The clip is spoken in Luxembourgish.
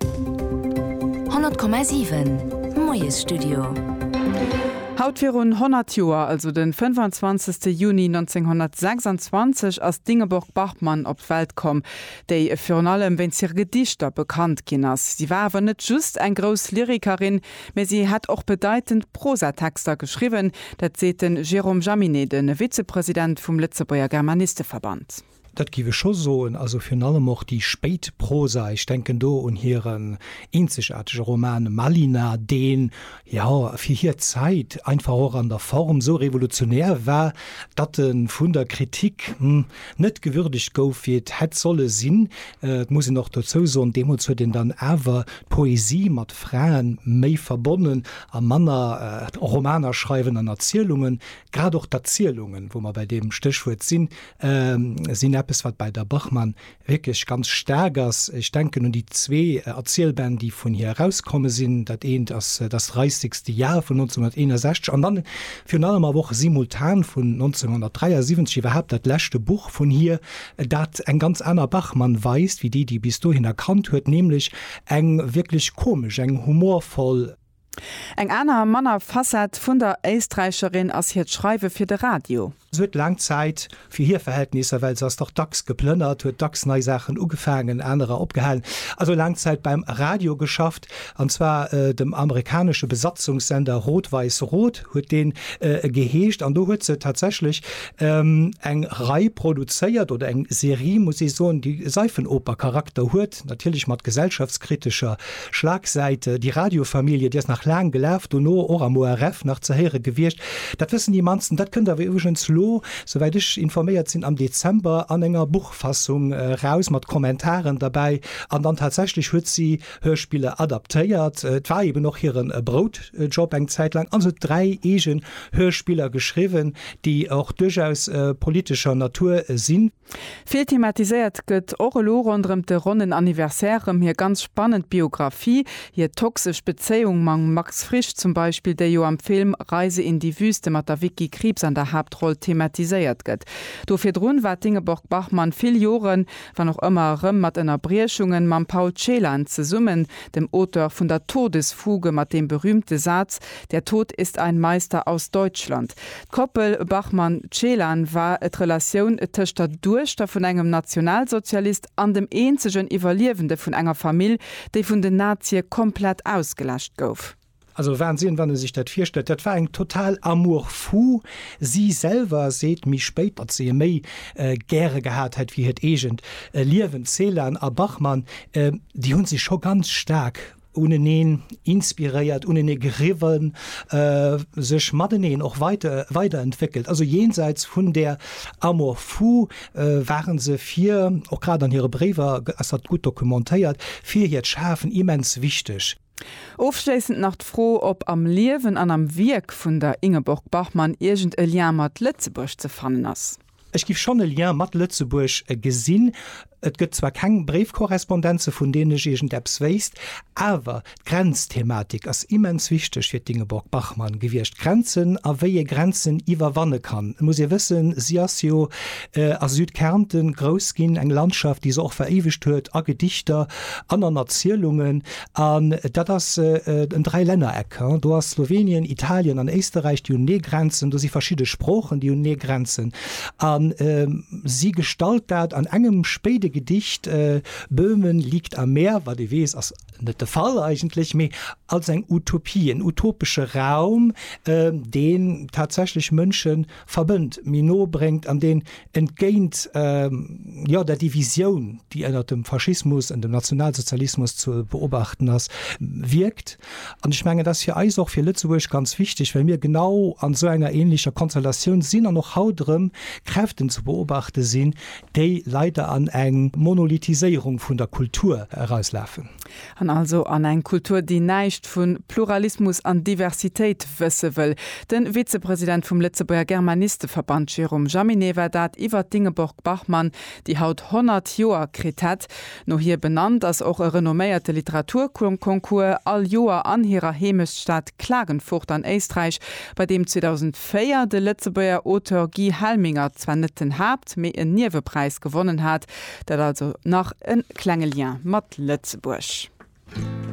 100,7 Moiesstudio. Haut virun 100 Joer, also de 25. Juni 1926, ass d'Ingeborg Bachmann op d'Welt komm, déi virun allem wéinst hire Gedichter bekannt ginn ass. Si war awer net just eng grouss Lyrikerin, mä si hätt och bedeitend Prosatexter geschriwwen. Dat seet de Jérôme Jaminet, de Vizepresident vum Lëtzebuerger Germanisteverband. Dat giff ech scho soen. Also virun allem och déi spéit Prosa, ech denken do un hiren eenzegaartege Roman Malina, deen, jo, fir hir Zäit einfach och an der Form esou revolutionär war, datt e vun der Kritik, hm, net gewürdegt gouf, wéi et hätt solle sinn. Et muss een och dozou soen, deemools huet een dann awer d'Poesie mat Fraen méi verbonnen a manner Romaner schreiwen an Erzielungen. Grad och d'Erzielungen, wou mer bei deem Stéchwuert sinn, sinn eppes, wat bei der Bachmann wierklech ganz staark ass. Ech denken un déi zwee Erzielbänn, déi vun hir erauskomme sinn. Dat eent ass Das reissigste Jahr vun 1961 an dann virun allem awer och Simultan vun 1973, iwwerhaapt dat leschte Buch vun hir, dat eng ganz aner Bachmann weist wéi déi, déi bis dohinner kannt huet, nämlech eng wierklech komesch, eng humorvoll. Eng aner, manner Facette vun der Éisträicherin ass hiert Schreiwe fir de Radio. Se huet laang Zäit, fir hir Verhältnisser, well se ass dach dacks geplënnert, huet dacks nei Saachen ugefaangen, anerer opgehalen, also laang Zäit beim Radio geschafft, an zwar dem amerikanesche Besatzungssender Rot-Weiss-Rot huet dee geheescht. An do huet se tatsächlech eng Rei produzéiert, oder eng Serie, muss ee soen, déi Seifenoper-Charakter huet, natierlech mat gesellschaftskritescher Schlagsäit, Déi Radiofamilie, déi ass nach laang gelaf, dono och am ORF nach ze héiere gewiescht. Dat wëssen déi mannsten. Dat kënnt awer iwwregens elo, souwäit ech informéiert sinn, am Dezember an enger Buchfassung eraus, mat Kommentaren derbäi. An dann tatsächlech huet si Hörspiller adaptéiert, et war eben och hire Broutjob eng Zäit laang, an se huet dräi eegen Hörspiller geschriwwen, déi och duerchaus politescher Natur sinn. Vill thematiséiert gëtt och elo ronderëm de ronnen Anniversaire rëm hir ganz spannend Biographie, hir toxesch Bezéiung mam Max Frisch zum Beispill, déi jo am Film Reise in die Wüste mat der Vicky Krieps an der Haaptroll thematiséiert gëtt. Do virdrun war d'Ingeborg-Bachmann vill Joren, wann och ëmmer erëm mat Ënnerbriechungen, mam Paul Celan zesummen, dem Auteur vun der Todesfuge mat deem berühmte Saz, Der Tod ist ein Meister aus Deutschland. D'Koppel Bachmann-Celan war d'Relatioun tëscht der Duechter vun engem Nationalsozialist an dem eenzegen Iwwerliewende vun enger Famill, déi vun den Nazie komplett ausgeläscht gouf. Also Wahnsinn, wann ee sech dat virstellt. Dat war eng total amour fou. Si selwer seet méi spéit, datt si e méi gäre gehat hätt wéi hiert eegent Liewen. Celan a Bachmann, déi hu sech scho ganz staark uneneen inspiréiert, unenee geriwwen, sech mateneen och weiter weiderentwéckelt. Also jenseits vun där Amour fou ware se fir, och grad an hire Bréiwer ass dat gutt dokumentéiert, fir hiert Schafen immens wichteg. Ofschléissend nach d'Fro, ob am Liewen an am Wierk vun der Ingeborg Bachmann iergend e Lien mat Lëtzebuerg ze fannen ass. Ech giff schon e Lien mat Lëtzebuerg gesinn. Et gëtt zwar keng Bréifkorrespondenze vun deenen ech iergendeppes wéisst, awer d'Grenzthematik ass immens wichteg fir d'Ingeborg-Bachmann gewiescht, Grenzen a wéi ee Grenzen iwwerwanne kann. Et muss ee wëssen, si ass jo a Südkärnten grouss ginn, eng Landschaft, déi se och veréiwegt huet a Gedichter an an Erzielungen. An dat ass en Dräilännereck. Do ass Slowenien, Italien an Éisterräich, déi hunn ee Grenzen. Do si verschidde Sproochen, déi hunn ee Grenzen. A si gestalt dat an engem spéide Gedicht, Böhmen liegt am Meer, wat ee weess, ass net de Fall eigentlech, mee als eng Utopie, en utopesche Raum, deen tatsächlech Mënsche verbënnt, méi no bréngt an deen entgéint jo der Divisioun, déi ënnert dem Faschismus an dem Nationalsozialismus ze beobachten ass, wierkt. An ech mengen, et ass fir eis och, fir Lëtzebuerg ganz wichteg, well mir genau an esou enger änlecher Konstellatioun sinn an och haut erëm Kräften ze beobachte sinn, déi leider an eng Monolithiséierung vun der Kultur erauslafen. An also an eng Kultur, déi näischt vu Pluralismus an Diversitéit wësse wëll. De Vizepresident vum Lëtzebuerger Germanisteverband Jérôme Jaminet war dat iwwer d'Ingeborg Bachmann, déi haut 100 Joer kritt hätt. No hir benannt ass och e renomméierte Literaturconcours all Joer an hirer Heemechtsstad Klagenfurt an Éisträich, bei deem 2004 de Lëtzebuerger Auteur Guy Helminger zwar net den Haapt-, mee en Niewepräis gewonnen hat, Dat also nach e klenge Lien mat Lëtzebuerg.